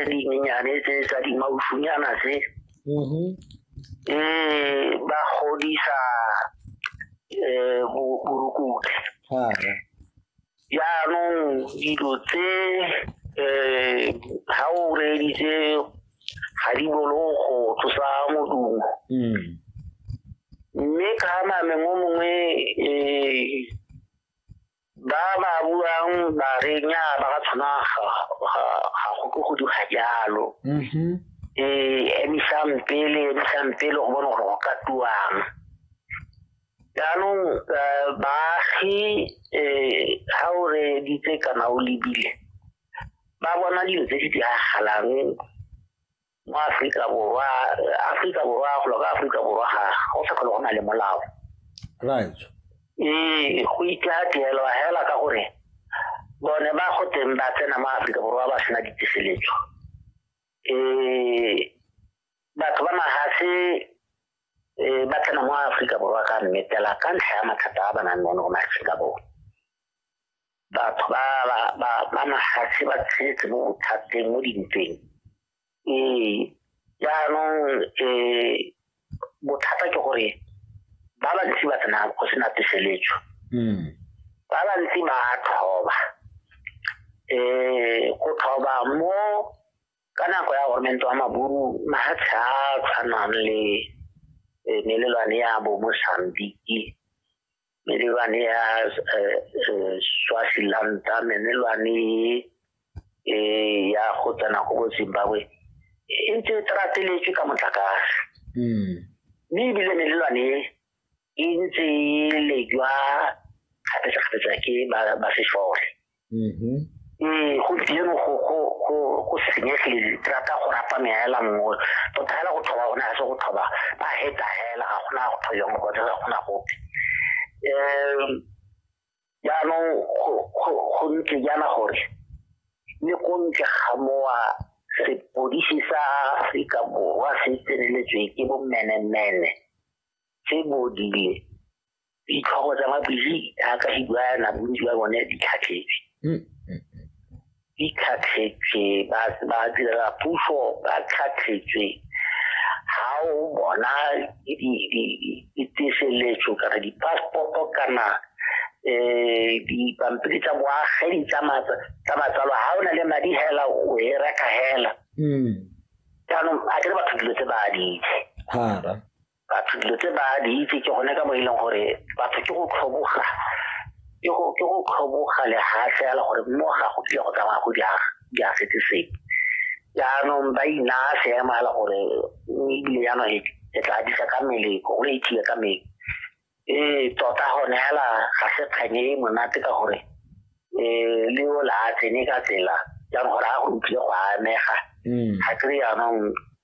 dinyenyane tse tsa dimausunyana tse mm-hmm. e ba godisa eh, borukutlhi jaanong dilo tse um ga o reeditse ga di bolo go tlosa modumo mm. mme ka nameng o mongwe um ba ba buang ba re nya ba ka tshwana ga go ke go duga jalo mm-hmm. ee emisang pele emisang pele go bone gore go ka tuang jaanong eh, baagi um ga o re ditse kana o lebile ba bona dilo tse di diragalang mo Afrika Borwa Afrika Borwa go loka Afrika Borwa ga go sa go na le molao right ee go itla tlelwa hela ka gore bone ba go teng ba tsena mo Afrika Borwa ba sena ditiseletso ee batho ba magase ee ba tsena mo Afrika Borwa ka mmetela ka ntlha ya mathata a ba nang le one go Afrika Borwa batho ba ba ba ba mafatshe ba tshetse mo bothateng mo dintweng ee jaanong um bothata ke gore ba bantsi ba tsena go sena peseletso hmm. ba bantsi ba thoba um go thoba mo ka nako ya gormente wa maburu mafatshe a tshwanang le eh, melelwane ya bo mosambiki melelwane ya eh, eh, swafilanta menelwane eh, ya go tsena go zimbabwe e ntse e trateletswe ka motlakase hmm. mme ebile melelwane e ntse e lejwa kgapetsa-kgapetsa ke ba sefole mm-hmm. ee gompieno go senyegile rata go rapa meela nngwe tota fela go thoba gone ga se go thoba ba heta fela ga gona go thoya mo kone ga gona gope um jaanong go ntse jaana gore le ko ntle ga mowa sepodisi sa aforika borwa se tseneletswe ke bommenemene se bodile ditlhogo tsa mabili jaaka se bua na bontsi ba bone di tlhatlhetse mm, mm, mm. di tlhatlhetse ba direla puso ba tlhatlhetse ga o bona diteseletso kana di-passporto kana um dipampiri tsa boagedi tsa matsalo ga o na le madi hela o e reka hela jaanong a kere batho dilo tse ba di itse batho dilo tse ba di itse ke gone ka mo e leng gore batho ke go tlhoboga ke go ke go tlhoboga lehatlhe ya le gore mo ga go tlile go tsamaya go di aga di agetse sepe jaanong ba inaya seemo ya le gore ebile jaanong e tla disa ka mmele go le ithiye ka mmele ee tota gone fela ga se kganye e monate ka gore um le o la tsene ka tsela jaanong gore a go utlwile go amega ga kry jaanong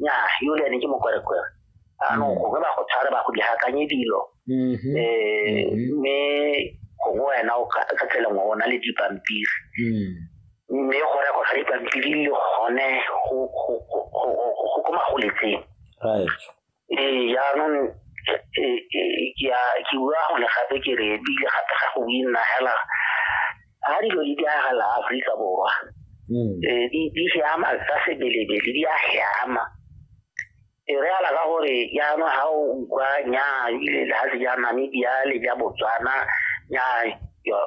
nya yole ne ke mokwerekwere anong mm. gongwe ba go tshware ba go diakanye dilo um mme gongwe wena o ka tsela ngwe o na le dipampiri mm. mme go rego ga dipampiri le gone go ko magoletseng ee jaanong ke bua gone gape ke re ebile gape ga go nna hela ga dilo di diragala aforika borwa mm. ee, di siama tsa sebelebele di a siama e re ala ka gore jaanong ga o utlwa nyaa ebile le ga se ja namibia le ja botswana nyaa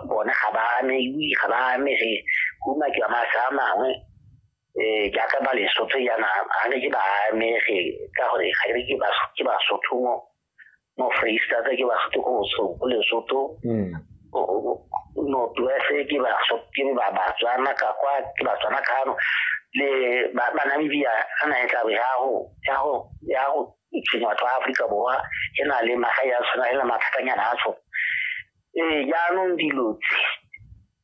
bone ga ba ame ga ba amege go makiwa masa a mangwe ee jaaka ba lesotho yana ga ne ke ba amege ka gore ga ke ke ke basotho mo mo freestata ke basotho ko bosoko lesotho hmm. northwest ke basotho ke ba batswana ka kwa ke batswana kano le banamibia ga na e tlabe ya go tshwenye batho ba aforika borwa e na le magae a tshwana e na mathatanyana a tshwana ee jaanong dilo tse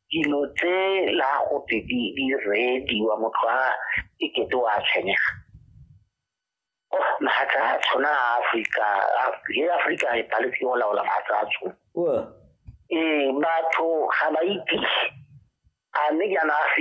dilo tse la gote di di rediwa motho a e kete wa tshwenyega oh mahatla a tshwana a afrika le afrika e paletse o laola mahatla a tshwana ee batho ga ba itise a mme jaana a